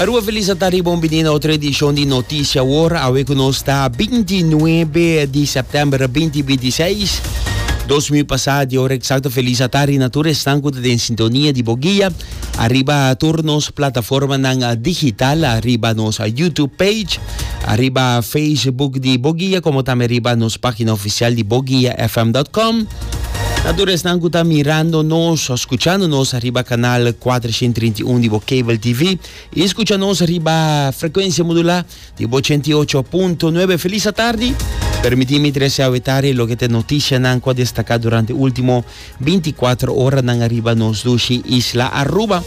Aruba Felisa ta riba un bini na otro edishon di Noticia Awor. Awe ku nos ta binti nuebe di sèptèmber binti binti seis, dos mi pasá di ora eksakto Felisa ta rina tur esnan ku ta den sintonia di bo guia ariba tur nos plataformanan digital, ariba nos YouTube page, ariba Facebook di bo guia, komo tambe ariba nos página ofisial di boguiafm dòt kòm. Na tur esnan cu ta mirando nos o scuchando nos riba canal 431 di bo cable TV y scucha nos riba frecuencia modulá di bo 88.9. Feliz atardi! Permiti mi trece a wetari loke te noticianan cu a destaca durante ultimo 24 oranan ariba nos dushi Isla Aruba.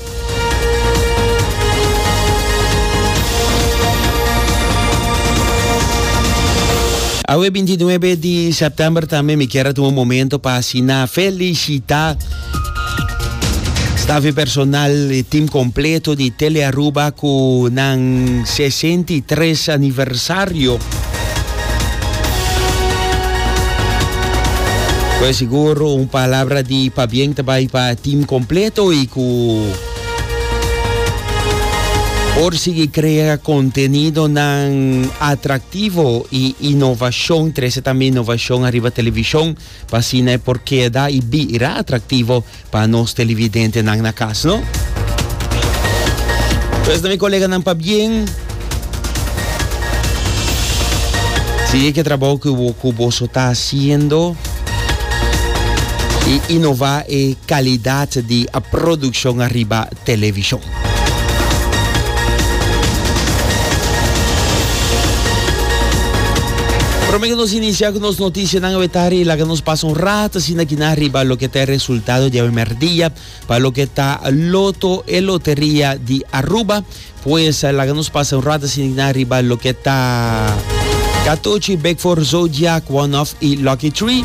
Awe binti nuebe di sèptèmber tambe mi kier a tuma un momento pa asina felisitá staf i personal e tim kompleto di Tele Aruba ku nan sesenta i tres aniversario. Pues sigur un palabra di pabien ta bai pa team completo y cu por sigui crea contenido nan atractivo y innovacion trece tambe innovacion arriba television Pa asina e por keda i bira atraktivo pa nos televidentenan na kas, no? Pues na mi koleganan pabien, sigui ku e trabou ku boso ta hasiendo i inová e kalidat di produkshon ariba televishon. Prome cu nos inicia cu nos noticianan awetari, laga nos pasa un rato asina kina riba loke ta e resultado di awe merdia pa loke ta Loto, e loteria di Aruba. Pues laga nos pasa un rato asina kina riba loke ta Catochi, Big Four, Zodiac, One Off y Lucky Three.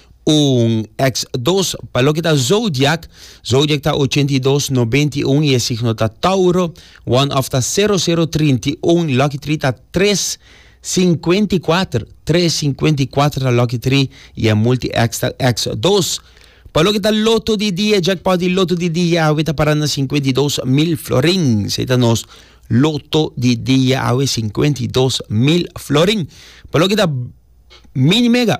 Un Eks dos Pa loke ta zodiak, zodiak ta ochenta i dos, nobenta i un i e signo ta Tauro. One of ta sero, sero, trinta i un. Lucky tree ta tres, sinkuenta i kuater. Tres, sinkuenta i kuater ta lucky tree i e multi Eks ta Eks dos. Pa loke ta loto di dia, jackpot di loto di dia awe ta para na sinkuenta i dos mil florin. Esei ta nos loto di dia awe, sinkuenta i dos mil florin. Pa loke ta mini mega.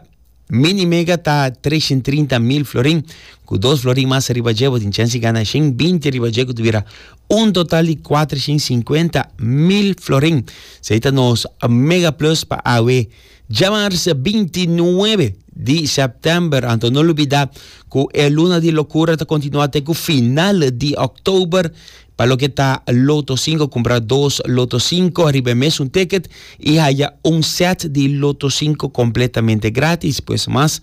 Mini mega ta treshen trinta mil florin ku dos florin mas ariba dje bo tin chèns di gana shen binti riba dje ku tuviera un total di kuatershen sinkuenta mil florin. Esei ta nos mega plus pa awe djamars binti nuebe di sèptèmber anto no lubidá ku e luna di lokura ta kontinuá te ku final di òktober Pa loke ta Loto Sinko kumpra dos Loto Sinko riba e mesun ticket i haya un set di Loto Sinko kompletamente gratis. Pues mas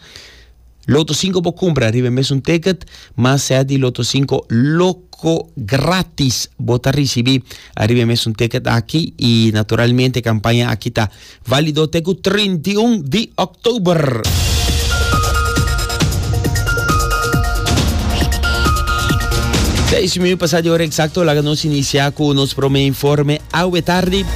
Loto Sinko bo kumpra riba e mesun ticket, mas set di Loto Sinko loko gratis bo ta risibi riba e mesun ticket aki i naturalmente e kampaña aki ta Válido te ku trinta i un di òktober. Seis i medio pasá di ora eksakto laga nos inisiá ku nos promé informe awe tardi.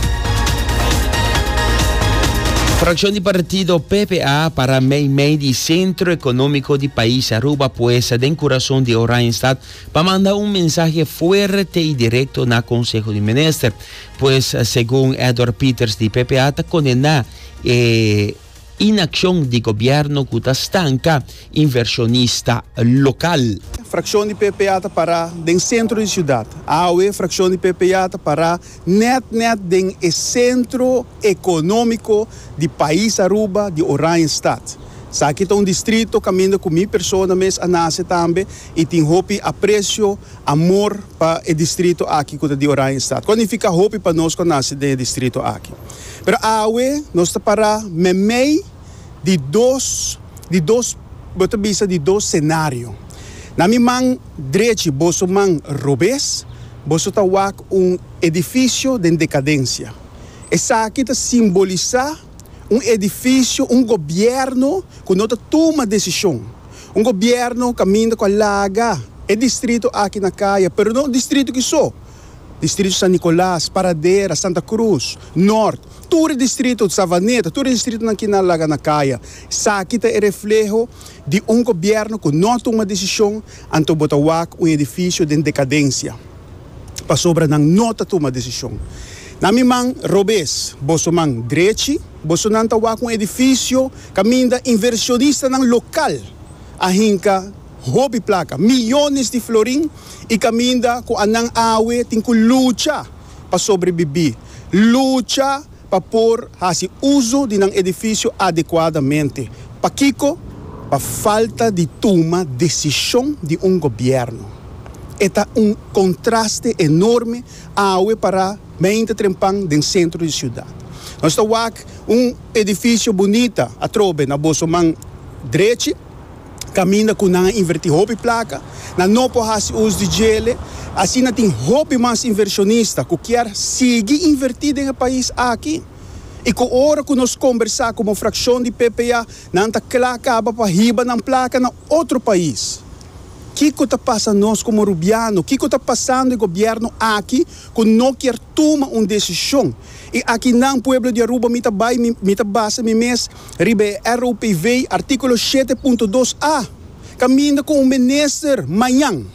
Fracción di partido PPA para Meimei di Centro Económico di País Aruba puesta den corazón de Oranjestad para mandar un mensaje fuerte y directo na Consejo de Minister. Pues segun Edward Peters di ppa ta kondená e inakshon di gobièrnu ku ta stanka invershonista lokal. Frakshon di ppa ta pará den sentro di siudat. Awe frakshon di ppa ta pará nèt nèt den e sentro ekonómiko di pais Aruba, di Oranjestad. Esaki ta un distrito kaminda ku mi persona mes a nase tambe i tin hopi apresio, amor, pa e distrito aki ku ta di Oranjestad. Kualifiká hopi pa nos ku a nase den e distrito aki. Pero awe nos ta pará meimei di dos di dos bo ta bisa di dos senario. Na mi man drechi boso man robes boso ta wak un edifisio den dekadensia. Esaki ta simbolisá. un edifisio, un gobièrnu ku no ta tuma desishon. Un gobièrnu kaminda ku a laga e distrito aki na kaya, pero no distrito ki so, distrito San Nicolas, Paradera, Santa Cruz, Nort, tur e distrito, Savaneta, tur e distritonan ki na laga na kaya. Esaki ta e refleho di un gobièrnu ku no tuma desishon, anto bo ta wak un edifisio den dekadensia. pasobra nan no ta tuma desishon. Na mi man robes, boso man drechi, bosonan ta wak un edifisio kaminda invershonistanan lokal a hinka hopi plaka, miyones di florin, i kaminda ku anan awe tin ku lucha pa sobrebibí, lucha. pa por hasi uso di nan edifisio adekuadamente. Pakiko? Pa falta di tuma desishon di un gobièrnu. E ta un kontraste enorme awe pará beinti trempan den sentro di siudat. Nos ta wak un edifisio bunita atrobe na boso man drechi caminda cu nan a inverti hopi placa, nan no por haci us di djele, asina tin hopi mas inversionista cu kier sigui inverti den e pais aki y cu ora cu nos combersa como fraccion di PPA nan ta cla caba pa hiba nan placa na otro pais. Kico ta pasa nos como Rubiano? Kico ta pasando e gobierno aki cu no kier tuma un decision? Y aki nan, pueblo di Aruba, mi ta bay, mi ta basa mi mes, riba e ROPV, artíkulo shete punto dos a, kaminda ku un minister mañan.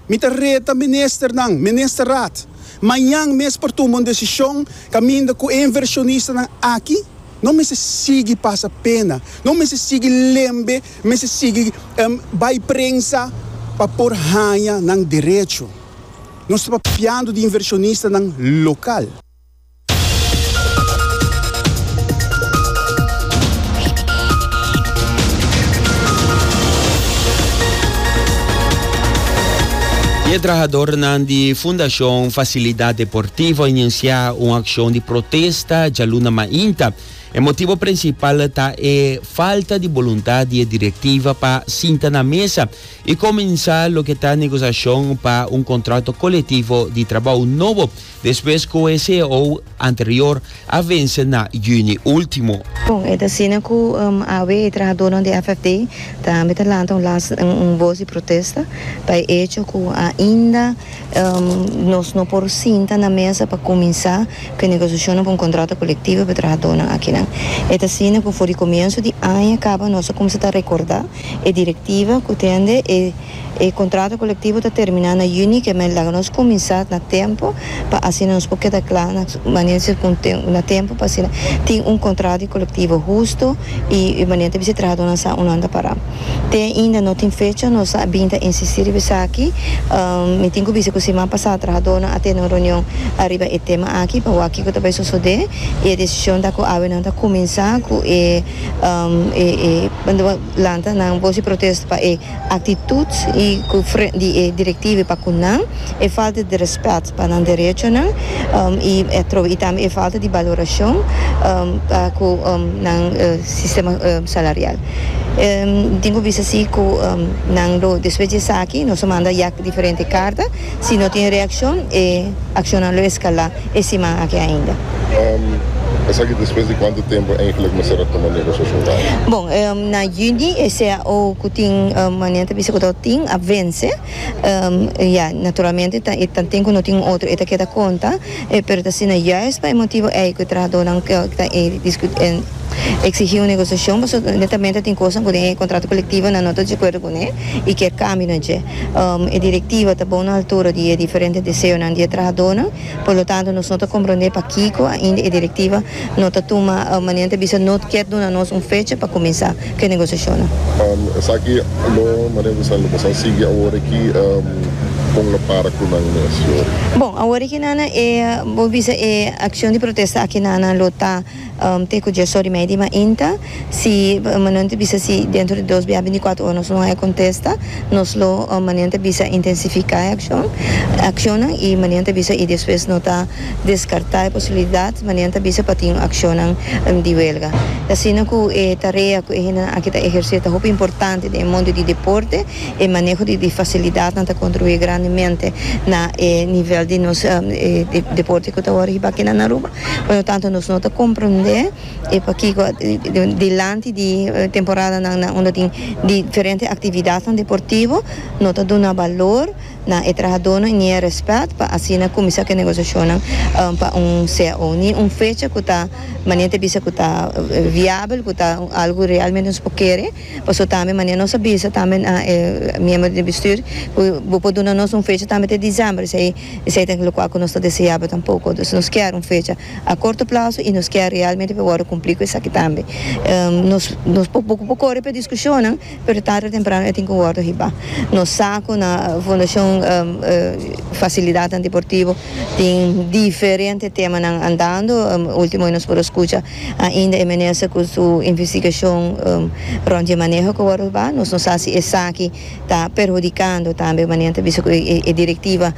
Mi ta reta ministernan, Ministerraad, mañan mes por tuma un desishon kaminda ku e invershonistanan aki no mester sigui pasa pena, no mester sigui lembe, mester sigui bai prensa pa por haña nan derecho. Nos ta papiando di invershonistanan lokal. Dies trahadornan di Fundacion Facilidad Deportivo a inicia un accion di protesta djaluna mainta. E motibo principal ta e falta di boluntad di e directiva pa sinta na mesa y comensa loke ta negociacion pa un contrato colectivo di trabou nobo. Despues cu e ceo anterior a vence na juni ultimo. Bon, e ta asina cu awe e trahadornan di FFD tambe ta lanta un las un voz di protesta pa e hecho cu ainda nos no por sinta na mesa pa cuminsa cu e negociacionnan pa un contrato colectivo pa e trahadornan akinan. E ta asina cu for di comienso di aña caba nos a cuminsa ta recorda e directiva cu tende e E kontrato kolektivo ta terminá na yüni, ke men laga nos kuminsá na tempu pa asina nos por keda kla na manera si kon na tempu pa asina tin un kontrato di kolektivo hustu i manera ta bisa e trahadónan sa un nan ta pará. Te ainda no tin fecha nos a bin ta insistí riba esaki. Mi tin ku bisa ku siman pasá trahadónan a tene un reunion ariba e tema aki pa wak kiko ta bai sosodé i e desishon ta ku awe nan ta kuminsá ku e lanta nan bolsa di protesta pa e Actitud y cu fre di e directive pa cu nan, e falta di respet pa nan derechonan y atrobe y tambe e falta di valoracion pa cu nan sistema salarial. Tin cu bisa si cu nan lo despues di esaki nos a manda yac diferente carta Si no tin reaccion e accionnan lo escala e siman aki ainda. Esaki despues di cuantu tempo eigenlijk mester a tuma negociacion ta aki? Bon, na juni e cao cu tin, manera ta bisa cu ta tin, a vence. Ya, naturalmente ta e tanten cu no tin otro e ta keda conta, pero ta asina juist pa e motibo ei cu e trahadornan ta e exigi un negociacion pasobra netamente tin cosnan cu den e contrato colectivo nan no ta djacuerdo cu ne y kier cambio na dje. E Directiva ta bon na altura di e diferente deseonan di e trahadónan, por lo tanto nos no ta komprondé pakiko ainda e Directiva no ta tuma, manera nan ta bisa, no kier duna nos un fecha pa kuminsá ku e negosiashonnan. Esaki lo, manera ku esnan lo pasá sigui awor aki, kon lo para ku nan mes, Yori? Bon, awor aki nan, bo bisa e akshon di protesta aki nan lo ta. Te cu dje sori mei di mainta, si Manuel ta bisa si dentro di dos bia binticuatro ora nos lo haya contesta, nos lo, Manuel ta bisa, intensifica e accion, accionnan y Manuel ta bisa y despues no ta descarta e posibilidad, Manuel ta bisa, pa tin accionnan di huelga. Ta asina cu e tarea cu e hendenan aki ta eherce ta hopi importante den e mundo di deporte, e maneho di di facilidadnan ta contribui grandemente na e nivel di nos deporte cu ta wor hiba aki na Aruba. Purtanto nos no ta komprendé e pakiko dilanti di temporadanan nan unda tin diferente aktividatnan deportivo no ta duna balor na e trahadónan ni e rèspèt pa asina kuminsá ku e negosiashonnan pa un cao ni un fecha ku ta manera ta bisa ku ta viabel ku ta algu ku realmente nos por kere pasobra tambe manera nos a bisa tambe na e miembro di bistür ku bo por duna nos un fecha tambe ta e diciember esei. Esei ta lokua ku nos ta deseaba tampoko. Dus nos kier un fecha a korto plaso i nos kier realmente pa wòrdu kumplí ku esaki tambe. Nos nos por poko por kore pa e diskushonnan, pero tarde o temprano e tin ku wòrdu hibá. Nos sa ku na Fundashon Fasilidatnan Deportivo tin diferente temanan andando. Último nos por a skucha ainda e minister ku su investigashon rònt dje maneho ku wòrdu hibá. Nos no sa si esaki. ta perhudikando tambe manera nan ta bisa ku e direktiva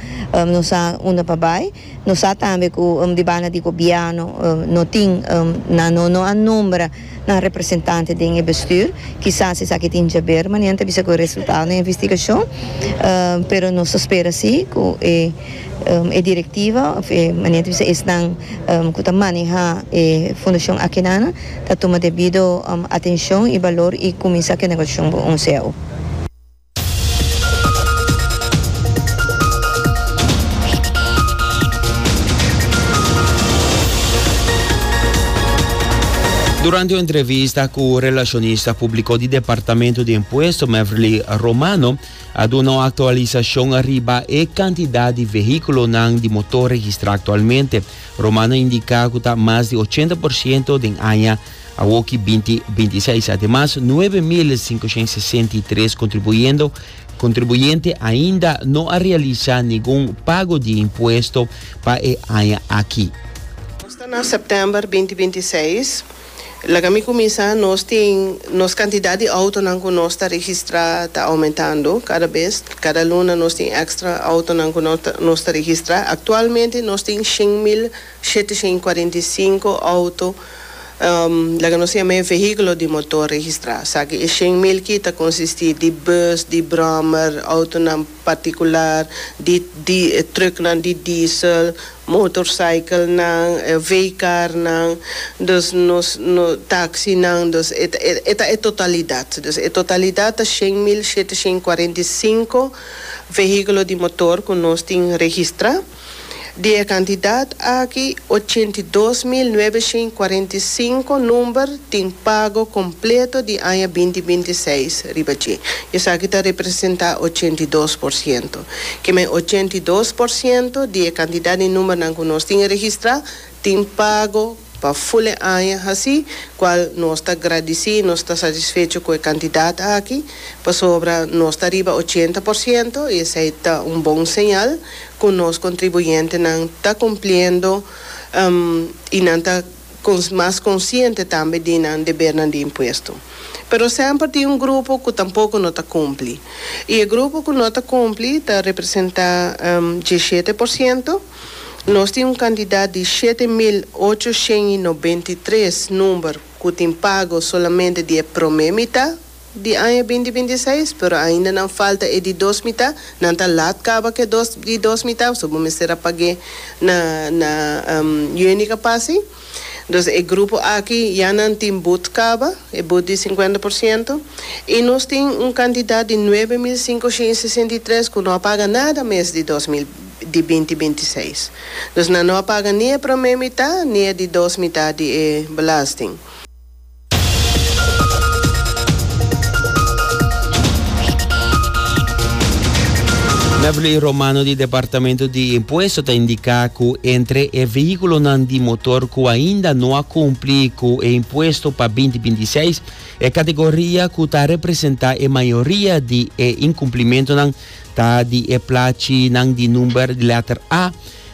no sa unda pa bai, no sa tambe ku di banda di gobièrnu no tin nan no no a nombra nan representante den e bestür, kisas esaki tin jaber manera nan ta bisa ku e resultado na e investigashon, pero nos ta spera si ku e e direktiva manera nan ta bisa esnan ku ta maneha e fundashon Akenanan. ta tuma debido atencion y balor y cuminsa cu e negociacion bo un ceo. Durante un entrevista cu relacionista publico di Departamento di Impuesto Mevrilly Romano a duna un actualisacion riba e cantidad di vehiculonan di motor registra actualmente. Roman a indiká ku ta mas di ochenta por siento den aña awoki binti binti seis. Ademas nuebe mil sinkoshen sesenta i tres kontribuyendo kontribuyente ainda no a realisá ningun pago di impuesto pa e aña aki. Nos ta na sèptèmber binti binti seis Laga mi cuminsa, nos tin, nos cantidad di autonan cu nos ta registra ta aumentando cada bes, cada luna nos tin extra autonan cu nos ta registra, actualmente nos tin shin mil shetecien y cuarenta y cinco auto, laga nos yama e vehiculo di motor registra, esaki e shin mil ki ta consisti di bus, di brommer, autonan. particular, di di trucknan di diesel, motorcyclenan, veecarnan, dus nos no taxinan, dus e ta e ta e totalidad, dus e totalidad ta shen mil shete shen cuarenta y cinco vehiculo di motor cu nos tin registra. Di e kantidat aki, ochenta i dos mil nuebe shen i kuarenta i sinku number tin pago kompleto di aña binti binti i seis riba dje. Esaki ta representá ochenta i dos por siento. Kiemen ochenta i dos por siento di e kantidat di numbernan ku nos tin registrá tin pago. Pa full e aña haci, cual nos ta gradici, nos ta satisfecho cu e cantidad aki, pasobra nos ta riba ochenta por ciento y esey ta un bon señal cu nos contribuyentenan ta cumpliendo y nan ta mas consciente tambe di nan debernan di impuesto. Pero semper tin un grupo cu tampoco no ta cumpli y e grupo cu no ta cumpli ta representa dieschete por ciento. Nos tin un kantidat di shete mil ocho shen i nobenta i tres number ku tin pago solamente di e promé mitá di aña binti binti i seis, pero ainda nan falta e di dos mitá, nan ta lat kaba ku e di dos mitá, so bo mester a pag'é na na Jönica Passi. Entonces e grupo aki ya nan tin but caba, e but di cincuenta por ciento, y nos tin un cantidad di nuebe mil cincoshint y sesenta y tres cu no a paga nada mes di dos mil di binti binti i seis. Entonces nan no a paga ni e prome mitad ni e di dos mitad di e belasting. Beverly Romano di Departamento di Impuesto ta indica cu entre e vehiculonan di motor cu ainda no a cumpli cu e impuesto pa 2026, e categoria cu ta representa e mayoria di e incumplimentonan ta di e plachinan di number di letter A,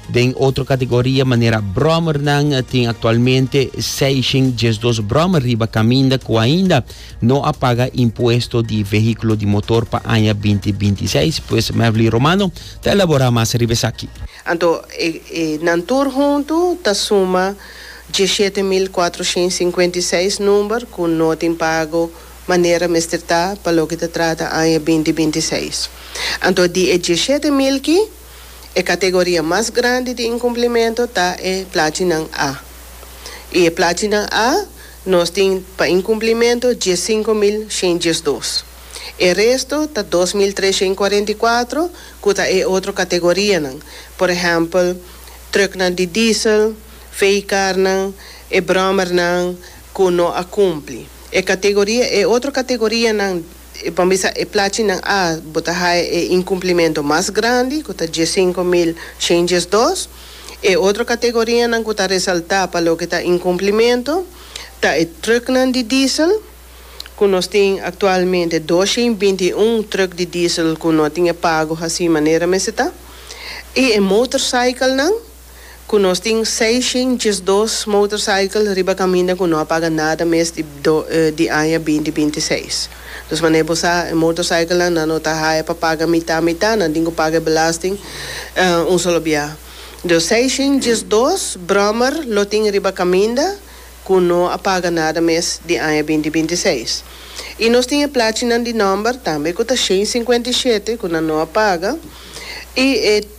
Den otro kategoria manera bròmernan tin aktualmente seishen diesdos bròmer riba kaminda ku ainda no a paga impuesto di vehíkulo di motor pa aña binti binti i seis, pues Mevly Romano ta elaborá mas riba esaki. Anto e nan tur huntu ta suma diesshete mil kuatroshen sinkuenta i seis number ku no tin pago manera mester ta pa loke ta trata aña binti binti i seis. Anto di e diesshete mil ki, E kategoria mas grandi di inkumplimentu ta e plachinan A. I e plachinan A nos tin pa inkumplimentu dies sinku mil shen dies dos. E resto ta dos mil tres shen kuarenta i kuatro ku ta e otro kategorianan, por ehèmpel, trùknan di diesel, vehikarnan, e bròmernan ku no a kumpli. E kategoria e otro kategorianan. E por bisa e plachinan a bo ta haya e incumplimento mas grandi cu ta dies sinku mil shen dies dos. E otro categorianan cu ta resalta pa loke ta incumplimento ta e trucknan di diesel cu nos tin actualmente dos shen binti i un truck di diesel cu no tin e pago haci manera mester ta y e motorcyclenan. ku nos tin seishen diesdos motorcycle riba kaminda ku no a paga nada mes di di aña binti binti seis. Dus manera bo sa e motorcyclenan nan no ta haya pa paga mitá mitá, nan tin ku paga e belasting un solo bia. Dus seishen diesdos brommer lo tin riba kaminda ku no a paga nada mes di aña binti binti seis. I nos tin e plachinan di nòmber tambe ku ta shen sinkuenta i shete ku nan no a paga i e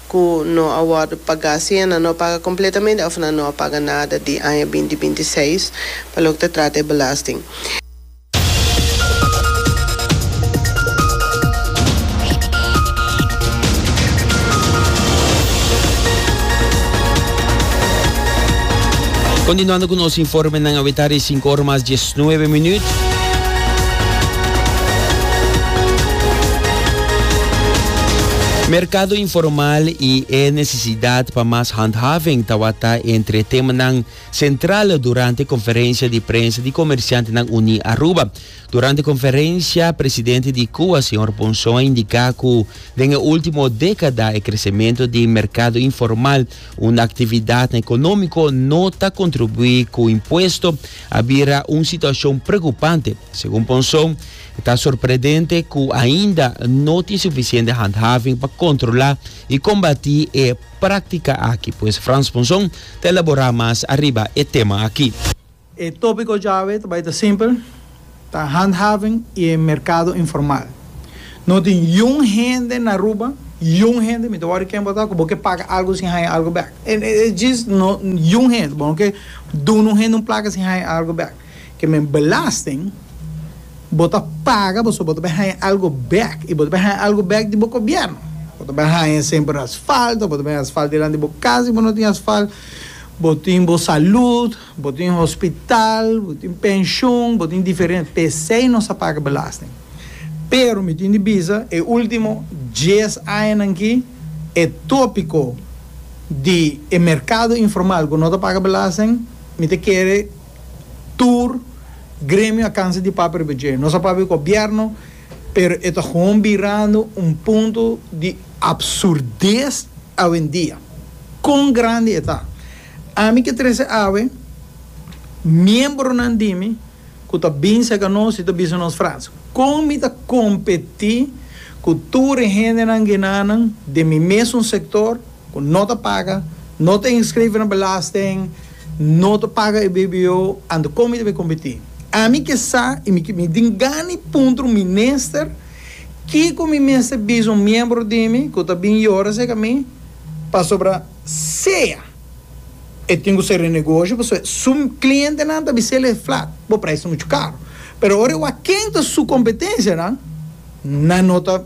ku no a wòrdu pagá si nan no a paga kompletamente òf nan no a paga nada di aña binti binti seis pa loke ta trata e belasting. Kontinuando ku nos informenan, awe tarde sinku ora mas dje. Nuebe minuut. Merkado informal i e nesesidat pa mas handhaving tawata entre e temanan sentral durante e konferensia di prensa di Komersiantenan Uní Aruba. Durante e konferensia, presidente di CUWA, señor Ponson a indiká ku den e último dékada e kresementu di merkado informal, un aktividat na ekonómiko, no ta kontribuí ku impuesto a bira un situashon preokupante. Segun Ponson, e ta sorpredente ku ainda no tin sufisiente handhaving pa kontrolá i kombatí e práktika aki. Pues Frans Ponson ta elaborá mas ariba e tema aki. E tópiko djawe ta bai ta simpel. Ta handhaving y e mercado informal. No tin youn hende na Aruba, youn hende, mi ta worry ken bo ta, cu bo ke paga algo sin haya algo back. E djis no youn hende. Bo no ke duna un hende un placa sin haya algo back. Ke men belasting bo ta paga pasobra bo ta bay haya algo back. Y bo ta bay haya algo back di bo gobierno. Bo ta bay haya semper asfalt, of bo ta bay haya asfalt dilanti bo cas si bo no tin asfalt. Bo tin bo salud. Bo tin hospital, bo tin penshon, bo tin diferente, p'esei nos a paga belasting. Pero mi tin di bisa, e ultimo dies añanan aki, e topiko di e merkado informal ku no ta paga belasting, mi ta kere tur gremio a kansa di papia riba dje. Nos a papia ku gobièrnu, pero e ta hon birando un punto di absurdes awendia. Kon grandi e ta? Ami ke trece awe, miembronan di mi ku ta bin serka nos i ta bisa nos Frans, kon mi ta kompetí ku tur e hendenan genanan den mi mesun sektor ku no ta paga, no ta inskrive na belasting, no ta paga e bbo, anto kon mi ta bin kompetí? Ami ke sa i mi ke mi tin gana di puntra un minister kiko mi mester bisa un miembro di mi ku ta bin yora serka mi pasobra Sea e tin ku ser e negoshi pasobra su klientenan ta bisel e flat, bo prijs ta muchu karu. Pero ora e wak ken ta su kompetensianan, nan no ta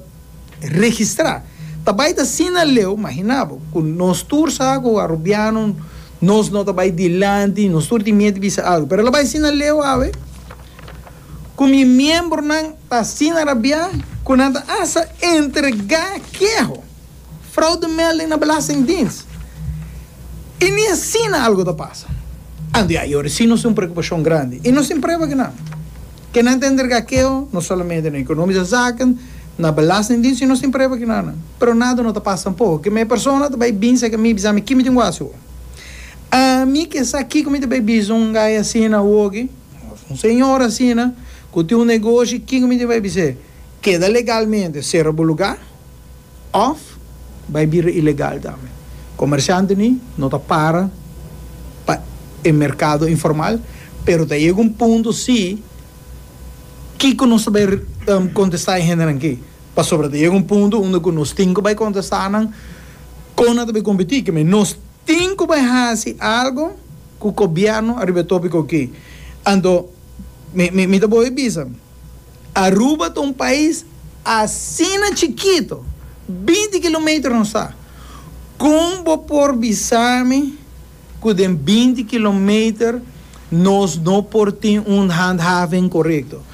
registrá. Ta bai ta asina leu, imaginá bo ku nos tur sa ku Arubiano nos no ta bai dilanti, nos tur tin miedu di bisa algu. Pero ta bai asina leu awe ku mi miembronan ta asina rabiá ku nan ta hasta entregá keho. Fraudemelding na Belastingdienst i ni asina algu ta pasa. Anto a yori si nos tin un preokupashon grandi i nos tin prueba ke nan. Ke nan ta entrega keo no solamente na Ekonomische Zaken, na Belastingdienst i nos tin prueba ke nan. Pero nada no ta pasa tampoco. Ke me persona ta bai binsa ke mi i bisa mi ki mi tin wak hasi awor. Ami ke sa kiko mi ta bai bisa un guy asina awoki of un señor asina ku tin un negoshi kiko mi ta bai bis'é keda legalmente sera bo lugar? òf bai bira ilegal tambe. Komershantenan no ta para pa e merkado informal, pero ta yega un punto si kiko nos ta bai kontestá e hendenan aki? Pasobra ta yega un punto unda ku nos tin ku bai kontestá nan kon nan ta bai kompetí. Ke men, nos tin ku bai hasi algu ku gobièrnu ariba e tópiko aki. Anto mi ta boe bisa. Aruba ta un pais asina chikito, binti kilometer nos ta. Kon bo por bisa mi ku den binti kilometer nos no por tin un handhaving korekto?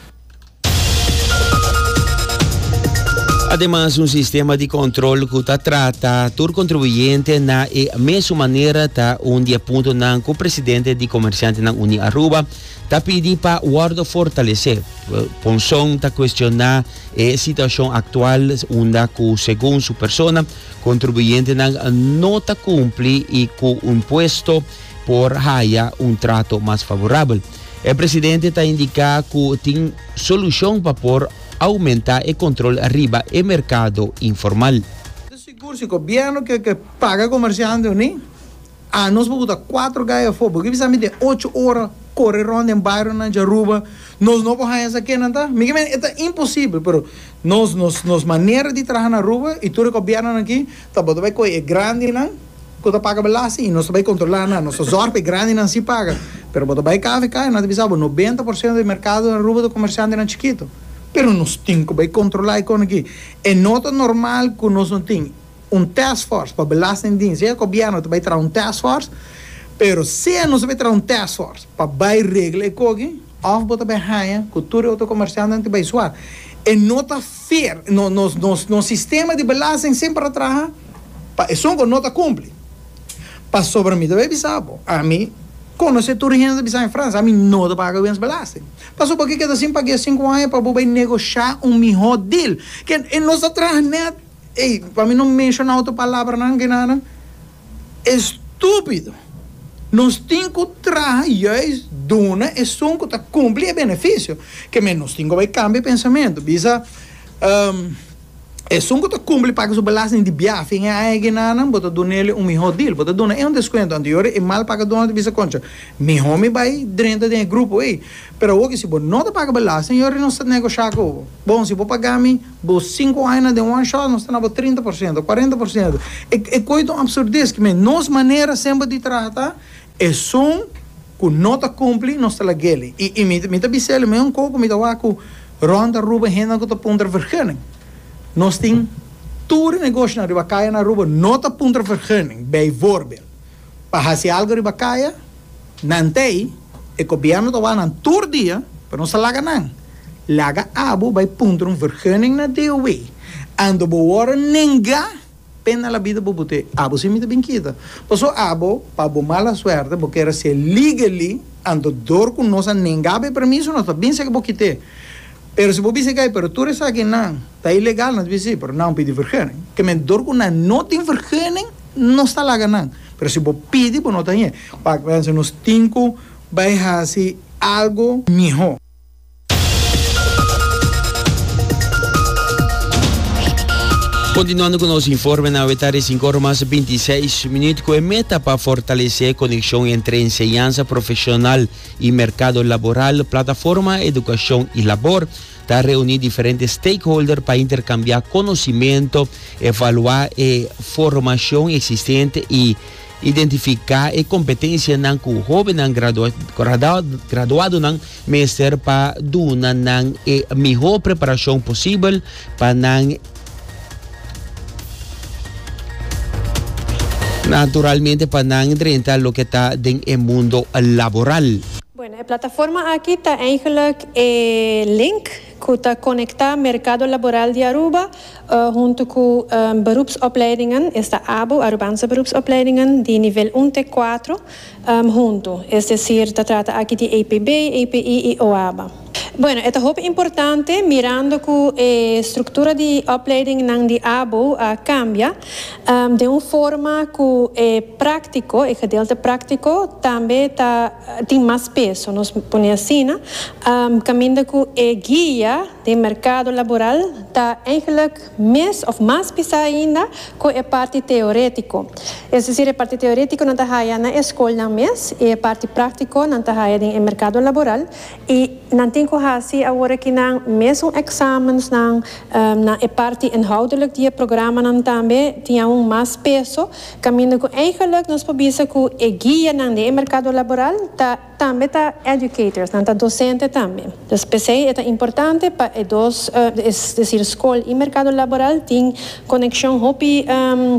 Ademas un sistema di kòntròl ku ta trata tur kontribuyente na e mesun manera ta un di e puntonan ku presidente di Komersiantenan Uní Aruba, Ta pidi pa wòrdu fortalesé. Ponson ta kuestioná e situashon aktual unda ku segun su persona kontribuyentenan no ta kumpli i ku un puesto por haya un trato mas favorabel. E presidente ta indiká ku tin solushon pa por oumentá e kontrol riba e merkado informal. Ta sigur si gobiernu ke ke paga komersiante o ni. A Nos por buta kuater gai afó. Bo kier bisa mi den ocho ora kore rònt den bairionan dje Aruba, nos no por haña esaki kenan ta? Mi ke mende e ta imposibel, pero nos nos nos manera di traha na Aruba i tur e gobièrnunan aki ta bo ta bai kohe e grandinan ku ta paga belasting i nos ta bai kontrolá nan. Nos ta zòrg pa e grandinan sí paga, pero bo ta bai kvk i nan ta bisa bo noventa por siento di e merkado den Aruba ta komersiantenan chikitu. Pero nos tin ku bai kontrolá e konenan aki. E no ta normal ku nos no tin. un task force pa belastingdiens. Dje e gobierno ta bay traha un task force, pero sea nos a bay traha un task force pa bay regla e cogi, of bo ta bay haya cu tur e otro comerciantenan tin bay suar, e no ta fair. No, nos, nos, nos sistema di belasting semper a traha pa esun cu no ta cumpli. Pasobra mi ta bay bisa bo, ami conoce tur hende ta bisa en Francia, ami no ta paga wens belasting. Paso bo ke keda sin pagu'e cinco anja pa bo bay negocia un miho deal? Ke nos ta traha net. Ey, pa mi no menshona otro palabranan ke nanan e stúpido. Nos tin ku traha juis duna esun ku ta kumpli e benefisio. Ke men nos tin ku bai kambia e pensamentu. Bisa, Esun ku ta kumpli paga su belasting di bia fin e aña ke nanan, bo ta duna elei un mihó dil. Bo ta duna ei un deskuento. Anterior e mal pagadónan ta bisa, Koncha, mihó mi bai drenta den e grupo ei. Pero awo ke si bo no ta paga belasting, yori nos ta negoshá ku bo. Bon, si bo pagá mi. Bo sinku añanan den one shot nos ta na bo trinta por ciento, cuarenta por ciento. E e koe ta un absurdes ki men nos manera semper di traha ta esun ku no ta kumpli nos ta lag'ele. I i mi mi ta bis'ele men un koko mi ta wak ku Ron ta Aruba hendenan ku ta puntra vergunning. Nos tin tur e negoshonan riba kaya na Aruba no ta puntra vergunning, bijvoorbeeld pa hasi algu riba kaya, Na Antai, e gobièrnu ta wak nan tur dia pa nos a laga nan. Laga abo bai puntra un vergunning na DOW. Ando bo wòrdu nengá, pena na labida bo bo ta e abo sin mi ta bin kita. Paso abo, pa bo mala suerte, bo kere ser legally, ando dor ku nos a nengá bo e permiso, nos ta bin seki bo kita e. Pero si bo bisa kei, pero tur esaki nan ta ilegal, nos bisa si, pero nan pidi verguning. Kemey dor ku nan no tin verguning, nos ta laga nan. Pero si bo pidi, bo no ta hie. Wak mense, nos tin ku bai hasi algu mihó. Kontinuando ku nos informe na Weta de sinku ora mas binti seis minüt ku e meta pa fortalesé konekshon entre enseñansa profeshonal, y mercado laboral, plataforma educacion y labor, ta reuni diferente stakeholder pa intercambia conocimento, evalua e formacion existente y identifica e competencianan cu hobennan graduadonan mester pa duna nan e miho preparacion posibel pa nan Naturalmente pa nan drenta loke ta den e mundo laboral. Bueno, e plataforma aki ta eigenlijk e link cu ta conecta mercado laboral di Aruba hunto cu beroepsopleidingen, esta abo, Arubaanse Beroepsopleidingen, di nivel un te cuatro, huntu, es desir ta trata aki di APB, API i OABA. Bueno, e ta hopi importante mirando cu e structura di opleidingnan di abo a cambia den un forma cu e practico, e gedeelte practico, tambe ta tin mas peso, nos pone asina, caminda cu e guia den mercado laboral ta eigenlijk. mes of mas bisa ainda cu e parti teoretico. Es decir, e parti teoretico nan ta haya na e scolnan mes y e parti practico nan ta haya den e mercado laboral y nan tin cu haci awor aki nan mesun examensnan na e parti inhoudelijk di e programanan tambe tin aun mas peso caminda cu eigenlijk nos por bisa cu e guianan den e mercado laboral ta Tambe ta educators, nan ta docente tambe. Dus p'esei e ta importante pa e dos, es decir scol y mercado laboral tin conexion hopi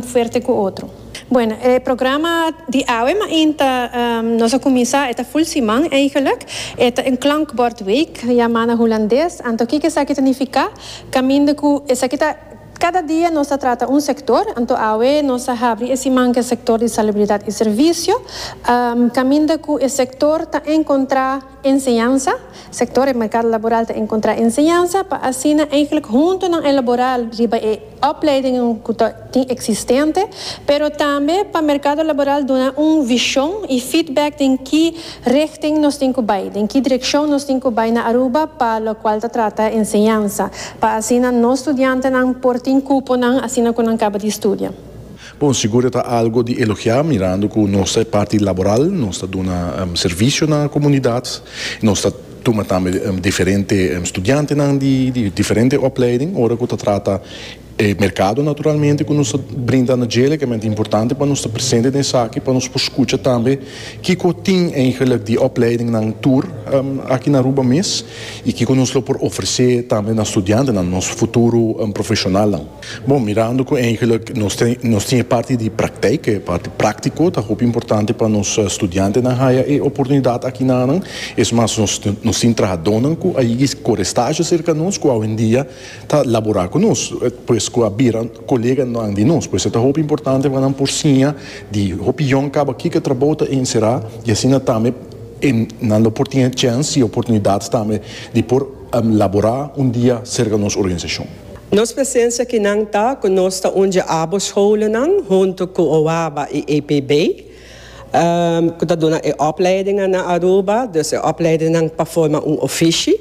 fuerte cu otro. Bueno, e programa di awe main ta, nos a cuminsa, e ta full siman eigenlijk. E ta un klankbordweek, yama na hulandes. Anto kiko esaki ta nifica? Caminda cu esaki ta. Kada dia nos ta trata un sektor, anto awe nos ta habri e siman ku e sektor di salubridat i servisio, kaminda ku e sektor ta enkontrá enseñansa, sektor e merkado laboral ta enkontrá enseñansa pa asina eihglik huntu nan elaborá riba e opleidingen ku ta tin eksistente, pero tambe pa merkado laboral duna un vishon i feedback den ki Richting nos tin cu bay? Den ki direccion nos tin cu bay na Aruba pa locual ta trata enseñansa, pa asina nos studiantenan por tin cuponan asina cu nan caba di studia? Bon, sigur e ta algo di elogia mirando cu nos ta e parti laboral, nos ta duna servicio na comunidad, nos ta tuma tambe diferente studiantenan di diferente opleiding ora cu ta trata. E merkado naturalmente ku nos ta brinda na dje lekemente importante pa nos ta presente den esaki pa nos por skucha tambe kiko tin eigenlijk di opleidingnan tur aki na Aruba mes i kiko nos lo por ofresé tambe na studiantenan, nos futuro profeshonalnan. Bon, mirando ku eigenlik nos tin e parti di prakteik, e parti práktiko, ta hopi importante pa nos studiantenan haya e oportunidat aki na nan. Es mas, nos tin trahadónan ku a yegis kore stazio serka nos ku awendia Ta labora cu nos, pues cu a bira coleganan di nos. Pues e ta hopi importante pa nan por siña di hopi yòn caba kico e trabou ta encera y asina tambe e nan lo por tin e chance y oportunidad tambe di por labora un dia cerca nos organizacion. Nos presencia akinan ta cu nos ta undje abo scholennan hunto cu OABA y APB cu ta duna e opleidingan na Aruba, dus e opleidinnan pa forma un ofishi.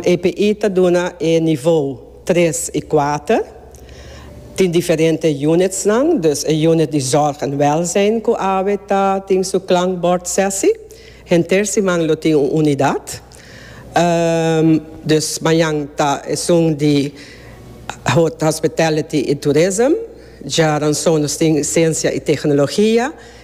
EPI ta duna e nivou tres i kuater. Tin diferente unitsnan, dus e unit di zòrg en wèlzijn ku awe ta tin su klankbòrdsèsi. Henter siman lo tin un unidat. Dus mañan ta esun di hospitality i tourism. Djaranson nos tin siensia i teknologia.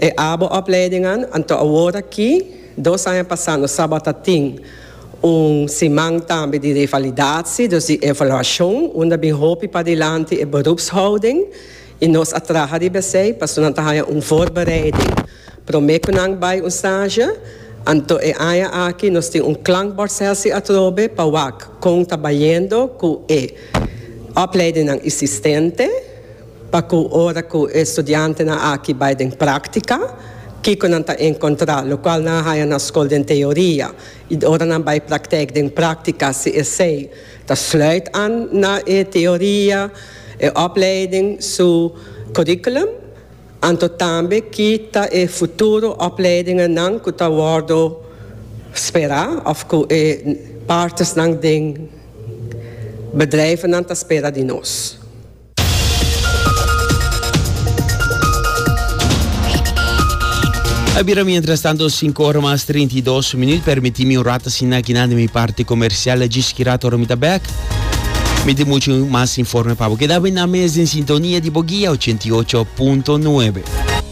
E abo opleidingan anto awor aki, dos aña pasá nos tabata tin un siman tambe di revalidatie, dus di evaluashon, unda bin hopi padilanti e berupshouding i nos a traha riba esei pasobra nan ta haña un voorbereiding promé ku nan bai un stage. Anto e aña aki nos tin un klankbordsessie atrobe pa wak kon ta bayendo ku e opleidingnan isistente. Pa cu ora cu e studiantenan aki bay den practica, kico nan ta encontra? Locual nan a haya na scol den teoria y ora nan bay practec den practica si esey ta sluit aan na e teoria, e opleiding su curriculum? Anto tambe ki ta e futuro opleidingennan cu ta wordo spera of cu e partnersnan den bedrijvennan ta spera di nos? A bira mientras tanto 5 ora mas 32 minuut. Permiti mi un rat asin aki nan di mi parti comercial. Djis ki rat ora mi ta bek. Mi tin mucho mas informe pa bo. Keda bai nan mes den sintonia di bo guia 88.9.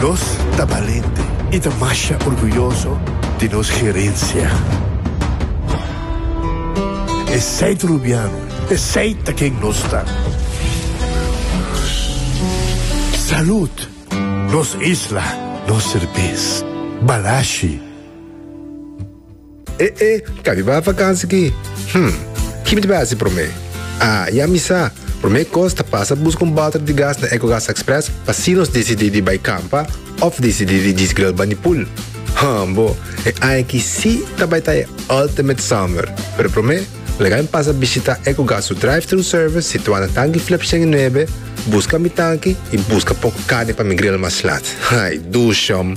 Nos ta balente i ta masha orguyoso di nos gerensia. Esei ta Rubiano, esei ta ken nos ta. Salud! Nos isla, nos serbes. Balashi! E e, kabiba vakansi ki? Hm, kipi ta bai hasi promé? Ah, ya mi sa! Promé kos ta pasa buska un balter di gas na Ecogas Express pa si nos disidí di bai kampa òf disidí di djis gril bani pool. Hm bo, e aña aki sí ta bai ta e ultimate summer! Pero promé, laga mi pasa bishitá Ecogas su drive-thru service situá na Tanki Flip shen i nuebe, buska mi tanki i buska poku carni pa mi gril mas laat. Ay, duushom!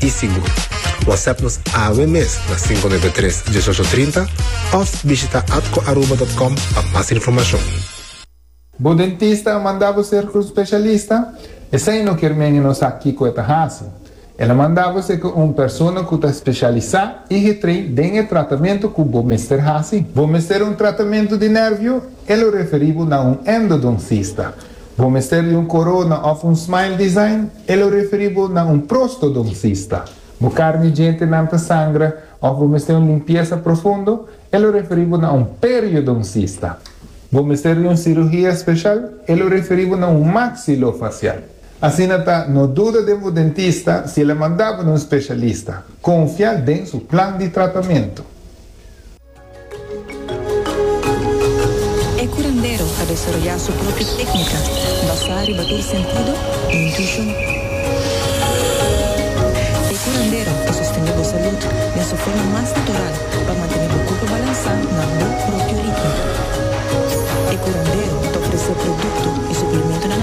i sigur. Whatsapp nos awe mes na cinco nueve tres, dieshocho trinta of bishita atcoaruba dot com pa mas informacion. Bo dentista a manda bo ser un specialista? Esei no kier men e no sa kico e ta haci. El a manda bo ser cu un persona cu ta specialisa y getrei den e tratamento cu bo mester haci. Bo mester un tratamento di nervio? E lo referi bo na un endodoncista. Bo mester di un corona of un smile design? E lo referi bo na un prostodoncista. Bo carni djentenan ta sangra of bo mester un limpiesa profundo? E lo referi bo na un periodoncista. Bo mester di un cirugia special? E lo referi bo na un maxilofacial. Asina ta, no duda den bo dentista si el a manda bo na un specialista. Confia den su plan di tratamento. E curandero a desaroyá su propio técnica basá riba tur sentido i intuishon. E curandero ta sostendé bo salud den su forma mas natural pa mantené bo kurpo balansá na bo propio ritmo. E curandero ta ofresé produkto i suplementonan.